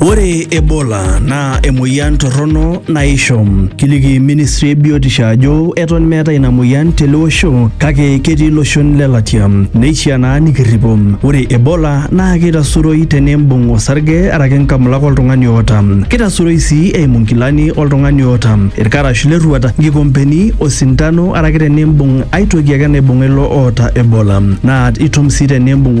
Ore Ebola naa emoyian torrono naisho. Kiliki ministry e biotisho ajo eton meetae ina moyian tele osho kake ketii iloshon le latia. Neishiaa naa nikirripo. Ore Ebola naa keitasuroi tenimbung osarge araki nkamulak oltung'ani oota. Keitasuroi sii eimu nkilani oltung'ani oota, ilkarash le rruat, nkikompeni, osindano araki tenimbung ae toki ake naibung'a ilo oota Ebola. Naa itum sii tenimbung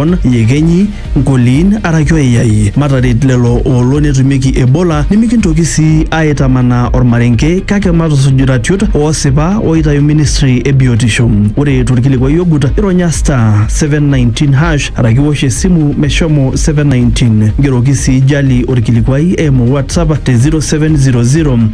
Lebanon, iyekenyi, nkoliin araki oiyai. Mataret lelo oolo netumieki Ebola nimikintoki sii aaitamanaa olmarenke kake matusuj iratiot oosipa ooitayu ministry e biotisho. Ore tolkilikuai ogut, ironya *719# araki iwosh esimu meshomo 719. Ngeroki sii Jali olkilikuai eimu WhatsApp te 0700